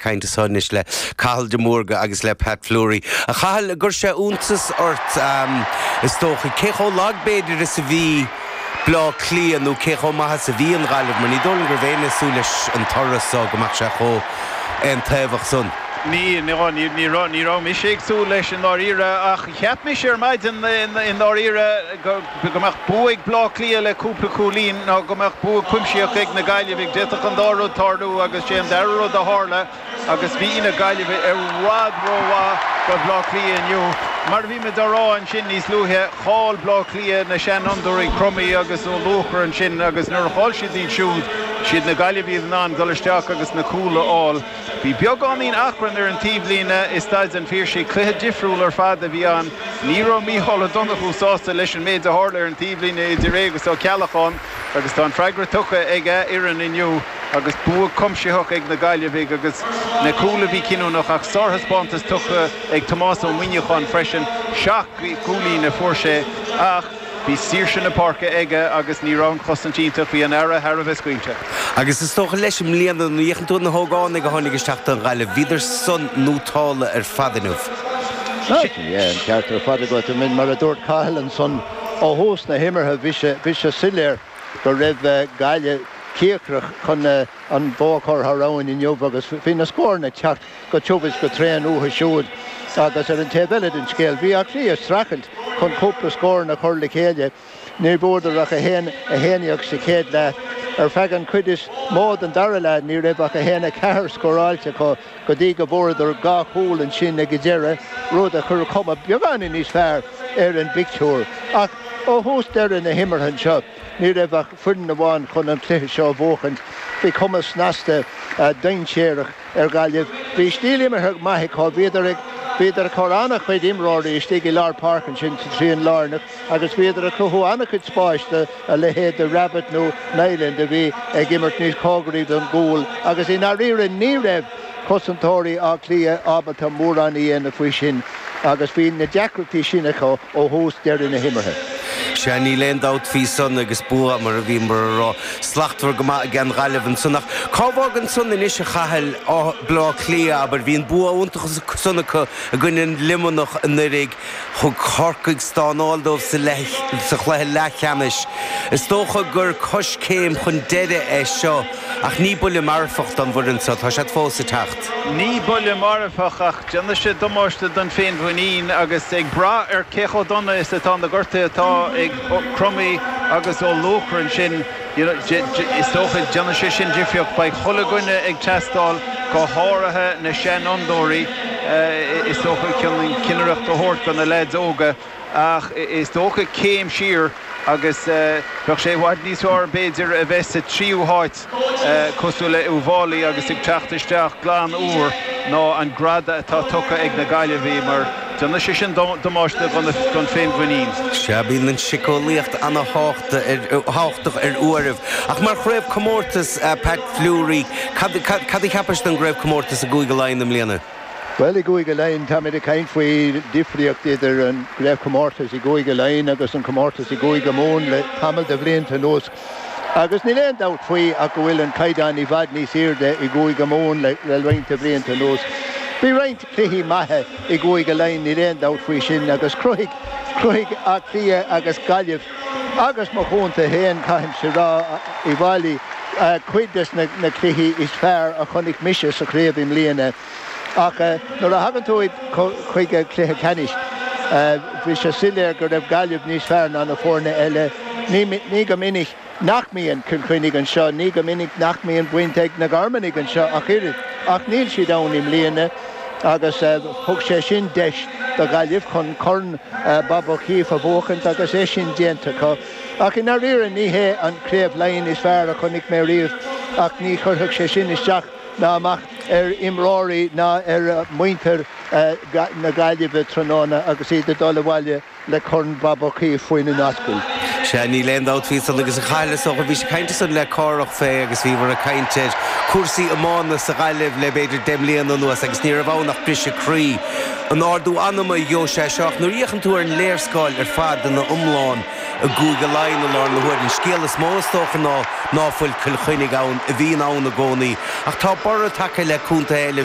caint anseo anois le Cathal de Mórdha agus le Pat Fleury. A Chathail, ar chuir sé iontas ort, is dócha, cé chomh lag b'fhéidir is a bhí Bleá Cliath nó cé chomh maith is a bhí an Ghaillimh, mar ní dóigh liom go raibh éinne ag súil leis an toradh san go mbeadh sé chomh aon-taobhach san. Ní, ní raibh mise ag súil leis i ndáiríre ach cheap mise ar maidin i ndáiríre go, go mbeadh bua ag Bleá Cliath le cúpla cúilín ná go mbeadh bua cuimseach ag na Gaillimhigh. D'fhéadfadh an dá rud tarlú agus sé an dara rud a tharla agus bhí na Gaillimhigh i bhfad rómhaith do Bhleá Cliath inniu. Mar a bhí mé dá rá ansin níos luaithe, chaill Bleá Cliath na seanfhondúirí Crummey agus Ó Luanaigh ansin agus nuair a chaill siad iad siúd, siad na Gaillimhigh a bhí in ann dul isteach agus na cúil a fháil. Bhí beagáinín achrainn ar an taobhlíne i Staid an Phiarsaigh. Cluiche difriúil ar fad a bhí ann. Ní raibh Micheál Ó Donnchú sásta leis an méid a tharla ar an taobhlíne idir é agus Ó Ceallacháin agus tá an freagra tugtha ag a fhoireann inniu agus bua cuimsitheach ag na Gaillimhigh agus na cúil a bhí cinniúnach ach sárthaispeántas tugtha ag Tomás Ó Muineacháin freisin. Seacht gcúilín a fuair sé ach. Bhí saoirse na páirce aige agus ní raibh an chosaint teannta faoi, bhí an fhaire thar a bheith scaoilte. Agus is dócha leis, i mbliana, nuair a fhéachann tú ar na hógánaigh a tháinig isteach don Ghaillimh, bhíodar san ar nótáil ar fad inniu. Sea, an ceart ar fad agat, Eoin. Mar a dúirt Cathal ansan ó thús na himeartha, bhí sé soiléir go raibh Gaillimh cíocrach chun an bua a chur thar abhainn inniu agus bhí na scóranna ag teacht go tiubh is go tréan uathu siúd, agus ar an taobh eile den scéal, bhí Áth Cliath ag streachailt chun cúpla scóranna a chur le chéile, ní bhfuaireadar ach 1, 1 sa chéad leath. Ar feadh an chuid is mó den dara leath ní raibh ach 1, 4 scóráilte acu go dtí go bhfuaireadar dhá chúl ansin ag an deireadh, rud a chuir cuma beagáinín níos fearr ar an bpictiúr. Ach ó thús deireadh na himeartha anseo. Ní raibh ach foireann amháin chun an cluiche seo a bhuachaint. Bhí cuma snasta dainséarach ar Ghaillimh. Bhí stíl imeartha maith acu. Bhíodar ag bhíodar ag cur an-chuid imreoirí istigh i lár páirce ansin sa trian lárnach agus bhíodar ag cruthú an-chuid spáis do a leithéid de Rabbitte nó Niland a bhí ag imirt níos cóngaraí don gcúl agus i ndáiríre ní raibh cosantóirí Átha Cliath ábalta mórán a dhéanamh faoi sin agus bhí na deacrachtaí sin acu ó thús deireadh na himeartha. Sea, níl aon dabht faoi san agus bua mar a bhíomar a rá, slachtmhar go maith aigen nGaillimh ansan ach cá bhfágann san anois, a Chathail? Bleá Cliath, abair. Bhí an bua iontach ansan acu i gcoinne Luimneach anuiridh. Thug Corcaigh stánáil dóibh sa chluiche leathcheannais. Is dócha gur coiscéim chun deireadh é seo. Ach ní buille marfach don bhfoireann seo, tá siad fós ag teacht. Ní buille marfach ach déanfaidh sé damáiste don féinmhuinín agus ag brath ar cé chomh dona is atá na gortuithe atá ag Crummey agus Ó Luachra ansin is dócha déanfaidh sé sin difríocht. Beidh chuile dhuine ag teastáil go háirithe na seanfhondúirí is dócha cinnireacht a thabhairt do na leaids óga. Ach is dócha céim siar agus bheadh sé i bhfad níos fearr b'fhéidir a bheith sa tríú háit cosúil le Uíbh Fhailí agus ag teacht isteach glan úr ná an greadadh atá tugtha ag na Gaillimhigh mar déanfaidh sé sin damáiste don féinmhuinín. Sea, bíonn an tsiceolaíocht ana thábhachtach ar uairibh. Ach mar chraobhchomórtas, Pat Fleury, cad a cheapais don gcraobhchomórtas i gCúige Laighean i mbliana? Bhuel i gCúige Laighean táimid ag caint faoi difríocht idir an gcraobhchomórtas i gCúige Laighean agus an comórtas i gCúige Mumhan le tamall de bhlianta anuas agus níl aon dabht faoi ach go bhfuil an caighdeán i bhfad níos aoirde i gCúige Mumhan le roinnt de bhlianta anuas. Bhí roinnt cluichí maithe i gCúige Laighean níl aon dabht faoi sin agus chruthaigh Áth Cliath agus Gaillimh Agus mo chontae fhéin caithimse a rá Uíbh Fhailí cuid des na cluichí is fearr a chonaic mise sa chraobh i mbliana ach nuair a thagann tú chuig an chluiche ceannais bhí sé soiléir go raibh Gaillimh níos fearr ná na foirne eile. Ní go minic nach mbíonn Cill Chainnigh anseo, ní go minic nach mbíonn baint ag na Garmanaigh anseo ach oiread ach níl siad ann i mbliana. agus thug sé sin deis do Ghaillimh chun Corn Bob Uí Chaoimh a bhuachaint agus é sin déanta acu. Ach i ndairíre ní hé an Craobh Laighean is fearr a chonaic mé riamh ach ní chuirfeadh sé sin isteach ná amach ar imreoirí ná ar mhuintir na Gaillimhe tráthnóna agus iad ag dul abhaile le Corn Bob Ó Caoimh faoina n-ascaill. Sea, níl aon dabht faoi san agus Cathal is dócha, bhí sé ag caint ansan le Cárthach fé agus bhíomar ag caint ar cúrsaí iomána sa Ghaillimh le b'fhéidir deich mbliana anuas agus ní raibh ann ach briseadh croí. An-ardú anama dhóibh é seo ach nuair a fhéachann tú ar an léarscáil ar fad ina iomlán i gCúige Laighean i láthair na huaire an scéal is mó is dócha ná ná fuil Cill Chainnigh ann a bhíonn ann i gcónaí ach tá borradh tagtha le contaetha eile